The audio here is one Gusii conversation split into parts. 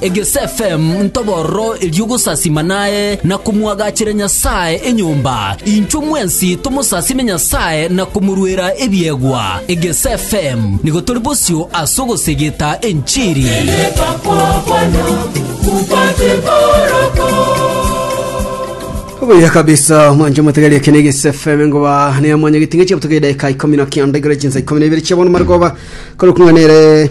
Egesfm ntobororo erio gosasima naye na komwagachera Nyasae enyomba, inchwe mwensi tomosasime Nyasae na komoruera ebiegwa. Egesfm nigo tori bosio ase ogosegeta enchiri. Obuya kabisa mwanje mutegeria kene gisefeme ngoba ne mwanya gitinge chepto ke dakika 19 igere chinsa 12 chiabona margoba koro kunganere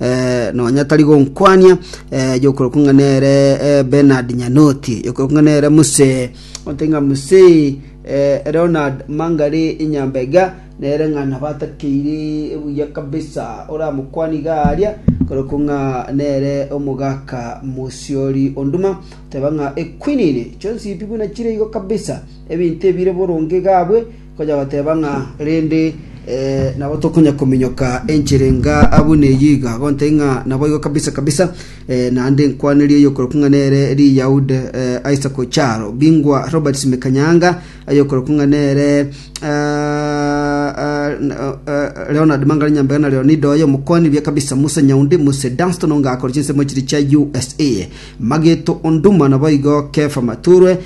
eh, nonya tari gonkwania eh, yokorokwa ng'a nere eh, benard nyanoti yokorokwa ng'a nere muse otenga muse eh, leonard mangari inyambega nere ng'a nabatakeire buya kabisa oramokwania iga aria korokwa ng'a nere omogaka mosiori onduma teba ng'a ekwinini chonsi pi buna chire igo kabisa ebinto ebire boronge gabwe Onye bateba ng'a rende nabo tokonya kominyoka enchera enga abwo neyio iga, gontaiyo ng'a naboigo kabisa kabisa, naende nkwanerie oyokorokwa ng'a nere Riyaude Isaac Ocharo, bingwa Robert Simekanyanga, oyokorokwa ng'a nere Leonard Mangare Nyambega na Leonida oye omokoni buya kabisa, Musa Nyaundi, Muse Dunstan onga akore chinsemo chiria chia USA, Mageto Onduma naboigo Kefa Maturwe,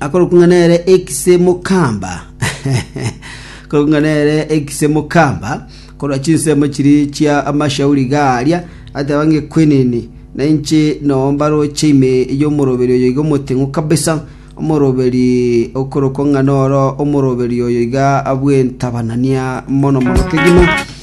akorokwa ng'a nere ekise mokamba akorokwa ng'a nere ekise mokamba korwa chinsemo chiri chia amashauri iga aria ateba ng'a ekwenene na inche noo mbaroche ime y'omoroberi oyo iga omoteng'u kabisa omoroberi okorokwa ng'a noro omoroberi oyo iga bw'entabanania mono mono kegima